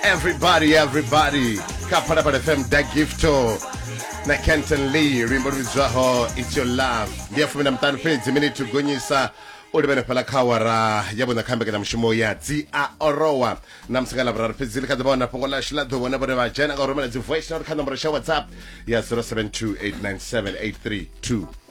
everybody everybody kha phalaphala fm da gifto na kenton lee luimbo lu vhidzwaho its your love ndi ya fumi na muṱanu fhedzi miniti gonyisa u livhene fhala kha awara ya vhuṋa kha mbekanyamushumo ya dzi a orowa na musi nga lavhuraru fhedzi ḽi kha ḓi vha wana fhungo ḽashu ḽa ḓo vhona vhone vha dzhena nga u rumela dzi voice note kha nomboro sha whatsapp ya 07289783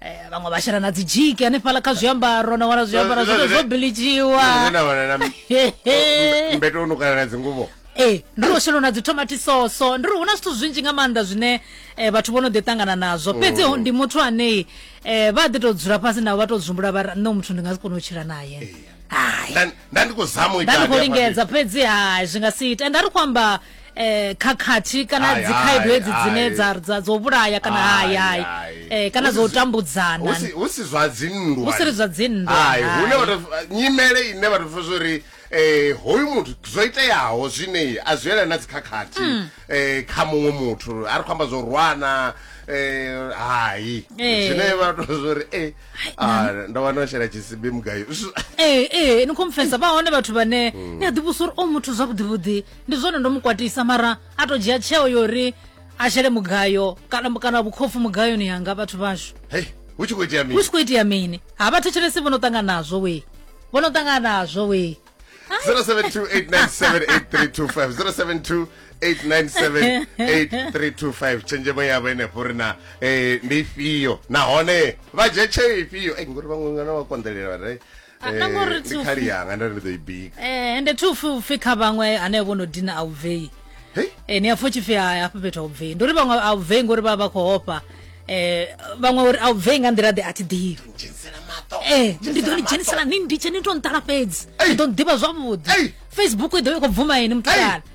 eh, vhaṅwe vha shela na dzi dzhiki hanefhala kha zwiambaro na wana zwiambaro zwoto zwo bilidziwa mbeto nukana na dzinguvo ee eh, ndi ro shelo na dzi tomati soso ndi ri hu na zwithu zwinzhi nga maanḓa zwine eh, vhathu vho no ḓi ṱangana nazwo mm. fhedzi ndi muthu anei eh, vha ḓi tou dzula fhasi navho vha tou dzumbula vha ri nṋe muthu ndi nga si kone u tshila naye nda ndi khou zama u ita nda ndi khou lingedza fhedzi hai zwi nga si ita ende a ri khou amba eh khakhathi kana Hai, dzi khaedu hai, hedzi dzine hai. dza dza dzo vhulaya kana Hai, hai hai hai. eh kana Hu si dzo zwi- tambudzana hu si- hu si zwa dzinndwa Hu si ri zwa dzinndwa, Hai, hai. hune vhathu nyimele ine vhathu pfa zwori eh hoyu muthu zwo iteaho zwine a zwi yelana na dzikhakhathi Hmm. eh kha muṅwe muthu a ri khou amba zwo rwana eh hai Eh. zwine vhathu pfa zwori eh ah, ndo wana u shela tshisibi mugayo eh eh ni khomfesa vha hone vhathu vhane ni a ḓivhusa uri o muthu zwavhuḓi vhuḓi ndi zwone ndo mu kwatisa mara a to dzhia tsheo yo ri a shele mugayo kana kana vhukhopfu mugayoni yanga vhathu vhashu hei hu tshi khou itea hu mini tshi khou itea mini ha vha thetshelesi vho no ṱangana nazwo we vho no ṱangana nazwo we 0728978325 0728978325 tshenzhemo yavho enefho uri na eh, ndi ifhio nahone vha dzhia tsheo ifhio Ei, ngori vhaṅwe ngana vha konḓelela vha ri, Ah, na ngori ri Eh, ndi tshi khali ufhi- yanga nda ri ri ḓo i bika eh ende thi upfi upfi kha vhaṅwe hanevho vho no dina a u bvei hei Eh, ni hafho tshipfi hai hafha fhethu a u bvei ndi uri vhaṅwe a u bvei ngori vha vha vha khou hofha eh vhaṅwe uri a u bvei nga nḓila ḓe a thi ḓivhi dzhenisela maṱo Eh, ndi ḓo ni dzhenisela ni nditshe ni to nṱala fhedzi Ei! ni ḓo nḓivha zwavhuḓi Ei! facebook i ḓo i khou bvuma ini mutukana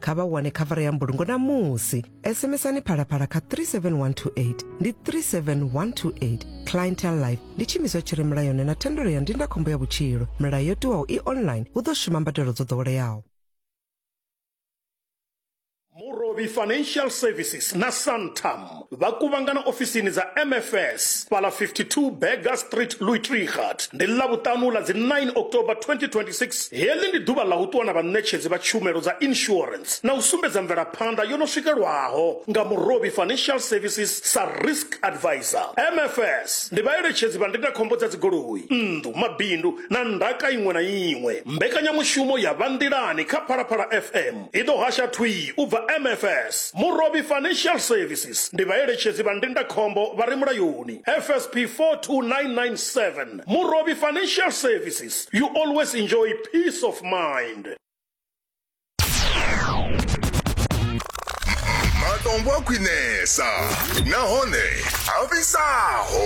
kha vha wane khavara ya mbulungo namusi sms-ani phalaphala kha 37128 ndi 37128 clientel life ndi tshiimiswa tshi re mulayoni na thendelo ya ndindakhombo ya vhutshilo milayo yo tiwaho i online hu ḓo shuma mbadelo dzo ḓoweleaho Murobi Financial Services na Santam vha kuvhangana ofisini dza mfs fhala 52 Burger Street Louis Trichardt ndi ḽavhuṱanu ḽa dzi 9 October 2026. Heḽi ndi ḓuvha ḽa u ṱuwa na vhaṋetshedzi vha tshumelo dza insurance na u sumbedza mvelaphanḓa yo no swikelwaho nga Murovhi Financial Services sa Risk Advisor. Mfs ndi vhaeletshedzi vha ndindakhombo dza dzigoloi, nnḓu, mabindu na ndaka iṅwe na iṅwe. Mbekanyamushumo ya Vha Nḓilani kha Phalaphala FM. I ḓo hasha thwii u bva MFS, Murovhi Financial Services, ndi vhaeletshedzi vha ndindakhombo vha re mulayoni, FSP 42997, Murovhi Financial Services, you always enjoy peace of mind. matombo a khwinesa nahone a vhisaho